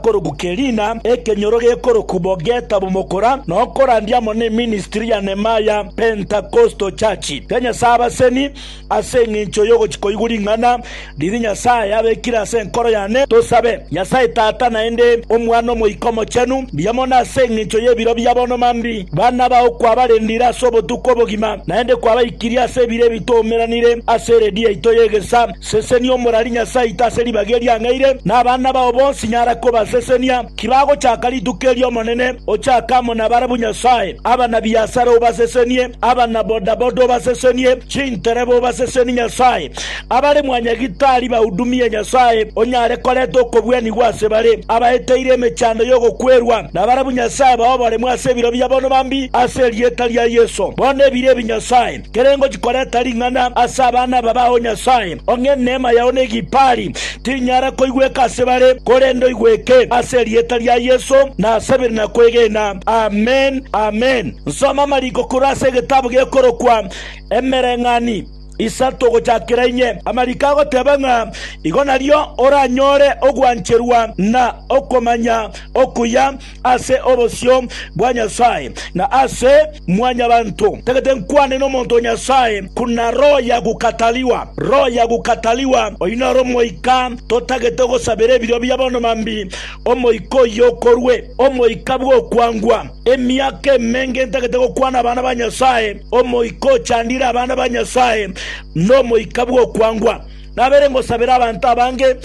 Korokwa Kelina, ekenyoro gekorokwa Bogeta Bomokora, nokorandia amo ne ministry ya Nehemiah Pentecostal Church ya Nyasae Abaseni. Ase engencho y'ogochia koigwa ring'ana riria Nyasae abekire ase enkoro yane, tosabe Nyasae Tata naende Omwana Omoika Omochenu, mbuya mono ase engencho y'ebiro bia bono mambia bana bao kwabarendire ase obotuko obogima, naende kwabaikirie ase ebiro ebi twaumeranire ase eredio yaito y'egesa. Sesenia omorari Nyasae oito ase ribaga erio ang'eire, na abana bao bonsi nyara kobasesenia. Kibagochaka rituko eri'Omonene, ochake amo nabarabwo Nyasae. Abana-biasara obasesenie, abana-bodaboda obasesenie, chintereba obasesenie Nyasae. Abare mwanyagitari bahudumie Nyasae, onyare koreta okobwanigwa ase bare. Abaeteire emechando y'ogokwerwa, nabarabwo Nyasae bao oboremu ase ebiro bia bono bambi ase erieta ria Yeso. Bono ebiro ebi Nyasae. Kerengochi koreta ring'ana ase abana aba bao Nyasae, ong'e neema yao ne egipaari tinyara koigweka ase bare, korende oigweke ase erieta ria Yeso na ase bire na kwegena. Amen. Amen. Nsoma amariko korwa ase egetabu gekorokwa Emereng'ani isato ogochakera inye. Amariko agoteba ng'a igo nario oranyore ogwancherwa na okomanya okuya. ase obosio bwa Nyasae na ase mwanyabanto. Tagete nkwane nomonto o Nyasae buna roho ya gokatariwa. Roho ya gokatariwa oyio noro omoika totagete gosabera ebiro bia bono mambi omoika oyio okorwe. Omoika bw'okwangwa. Emiaka emenge ntagete gokwana abana ba Nyasae, omoika ochandire abana ba Nyasae nomoika bw'okwangwa. Nabere ngosabera abanto abange,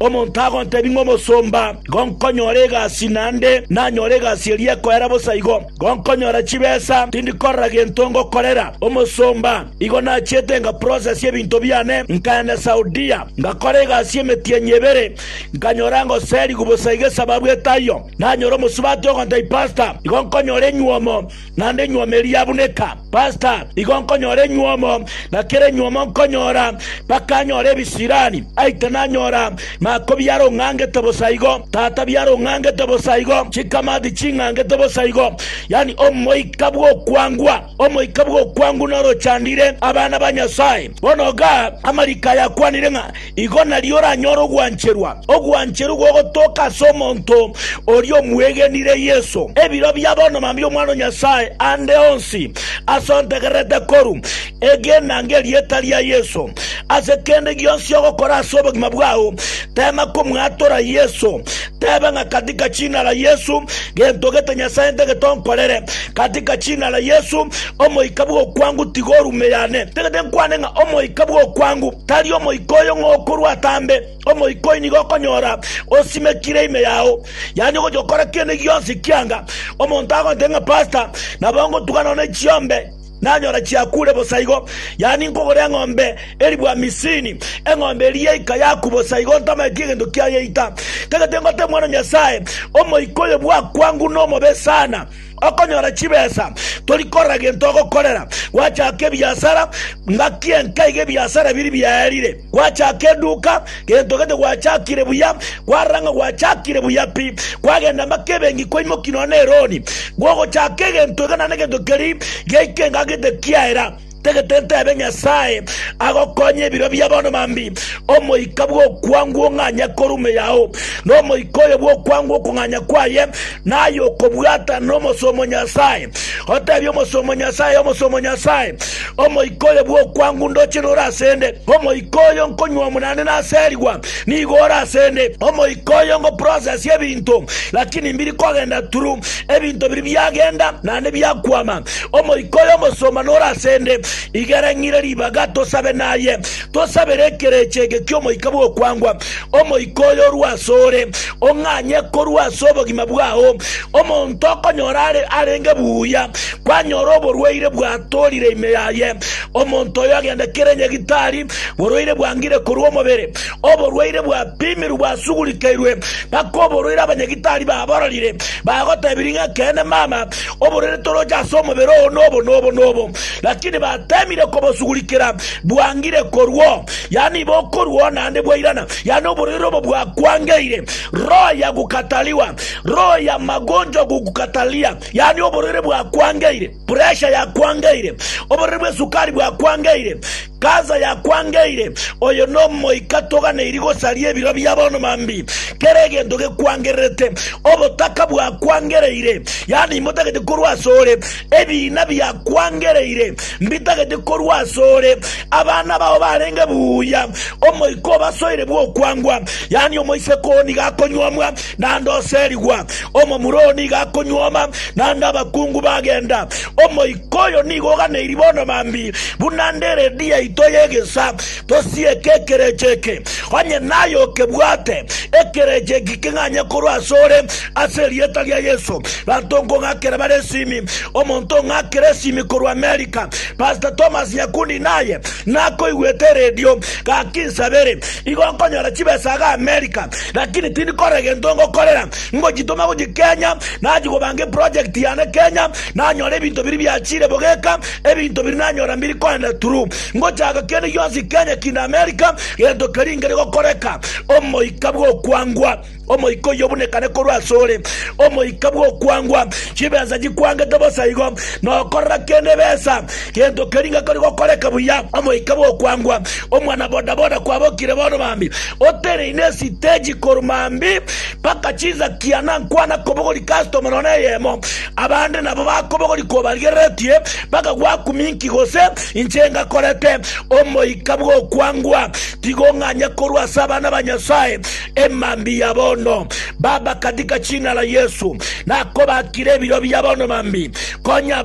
omonto agontebia ng'a omosomba, Gonkonyora egasi naende, nanyore egasi eria ekoera bosa igo. Gonkonyora chibesa, tindi korora gento ngokorera omosomba. Igo nachiete ngaprosesi ebinto biane, nkaenda Saudia, ngakora egasi y'emetienyi ebere, nkanyora ngoserigwa bosa iga esababu etaiyo. Nanyora omosubati ogontebia, Pasta, igo nkonyora enyuomo. Naende enyuomo eria yabuneka, pasta igo nkonyora enyuomo, na kera enyuomo nkonyora, mpaka nyore ebisirani. Aite nanyora mako biarong'angete bosa igo, tata biarong'angete bosa igo, chikamati ching'angete bosa igo, yani omoika bw'okwangwa, omoika bw'okwangwa norochandire abana ba Nyasae. Bono igaa amariko aya akwanire ng'a Igo nario oranyore ogwancherwa, ogwancherwa gogotoka ase omonto oria omwegenire Yeso. Ebiro bia bono mambia Omwana o Nyasae ande onsi ase ontegererete koru, egenanga erieta ria Yeso. Ase kende gionsi ogokora ase obogima bwao, teema komwatora Yeso. Tebe ng'a katika jina la Yesu, gento gete Nyasae ntagete onkorere. Katika jina la Yesu, omoika bw'okwangu tiga orume yane. Ntagete nkwane ng'a omoika bw'okwangu. Tari omoika oyo ng'a okorwa atambe, omoika oyio nigo okonyora osimekire ime yao, yaani ogocha gokora kende gionsi ekianga omonto agontebia ng'a pasta, nabo ngotuga nono echiombe nanyora chiakure bosa igo, yaani nkogora eng'ombe elifu hamisini, eng'ombe eria yaika yaku bosa igo ntamanyeti egento kiayeita. Tagete ngote Omwana o Nyasae, omoika oyo bwakwanguna omobe sana. Okonyora chibesa tori korora gento ogokorera. Gwachaka ebiasara, ngaki enka iga ebiasara biri biaerire. Gwachaka eduka, gento gete gwachakire buya, kwarora ng'a gwachakire buya pi. Kwagenda mpaka ebenki kwaimoki nonya ne eroni. Gogochaka egento iga naende gento keria giaika engaki gete kiaera. Tagete ntebe Nyasae agokonye ebiro bia bono mambi, omoika bw'okwangwa ong'anya korume yao, na omoika oyo bw'okwangwa okong'anya kwaye, naye okobwatana n'omosuomo Nyasae. Otebie omosuomo Nyasae, Omosuomo Nyasae, omoika oyo bw'okwangwa ndoche nore asende, omoika oyo nkonywa omonane naserigwa nigo ore asende, omoika oyo ngoprocess ebinto, lakini mbiri kogenda turu, ebinto biri biagenda naende biakwama. Omoika oyo omosomba nore ase 'nde, igera ng'ire ribaga tosabe naye. Tosabere ekerecha eke ki'Omoika bw'okwangwa, Omoika oyo orue asore, ong'anye korwa ase obogima bwao. Omonto okonyora are arenge buya, kwanyora oborwaire bwatorire ime yaye, omonto oyo agende kere nyagitari, borwaire bwangire korwa omobere, oborwaire bwapimirwe bwasugurikeirwe, mpaka oborwaire abanyagitari babororire, bagotebirie ng'a ekeene mama, oborere toroche ase omobere oo nobo nobo nobo, lakini batemire kobosugurikera bwangire korwao, yaani iba okorwao naende bwairana, yaani oborere obo bwakwangeire, roho ya gukatariwa, roho ya magonjwa gokukataria, yaani oborere bwakwangeire, puresha yakwangeire, oborere bw'esukari bwakwangeire, Gaza yakwangeire, oyo nomoika toganeiri gosaria ebiro bia bono mambi, kera egento gekwangererete, obotaka bwakwangereire, yaani imbotagete korwa asore, ebiina biakwangereire mbitagete korwa asore, abana bao barenge buya, omoika obasoire bw'okwangwa, yaani omoiseke oo nigo akonyuomwa, naende oserigwa, omomura oo nigo akonyuoma, naende abakungu bagenda, omoika. Koyo nigo oganeirie bono mambi, buna nde redi yaito y'egesa, tosieke ekerecha eke, onye naye okebwate, ekerecha eki king'anye korwa asore, ase erieta ria Yesu. Banto nkong'akera bare esimi, omonto ong'akera esimi korwa America, Pastor Thomas Nyakundi naye nakoigwete eredio, gaki nsabere, igo nkonyora chibesa iga America, lakini tindi korora egento ngokorera, ngochitoma gochia Kenya, nachi kobanga eproject yane Kenya, Nanyore ebinto biria biachire bogeka, ebinto biria nanyora mbiri koenda turu. Ngochaka kende gionsi Kenya kinde Amerika, gento keria nkere gokoreka, omoika bw'okwangwa, omoika oyio obunekane korwa asore, omoika bw'okwangwa, chibesa chikwangete bosa igo, nokorora kende ebesa, gento keria ngakori gokoreka buya, omoika bw'okwangwa, omwana boda boda kwabokire bono mambi, otereine esiteji korwa mambi mpaka chinsa kiana nkwana kobogori customer nonye eyemo, Abande nabo bakobogoria kobarigereretie, bakagwa kuminki gose inche ngakorete omoika bw'okwangwa, tiga ong'anye korwa ase abana ba Nyasae emambi ya bono. Baba, katika jina la Yesu, nakobakire ebiro bia bono mambi. Konya abana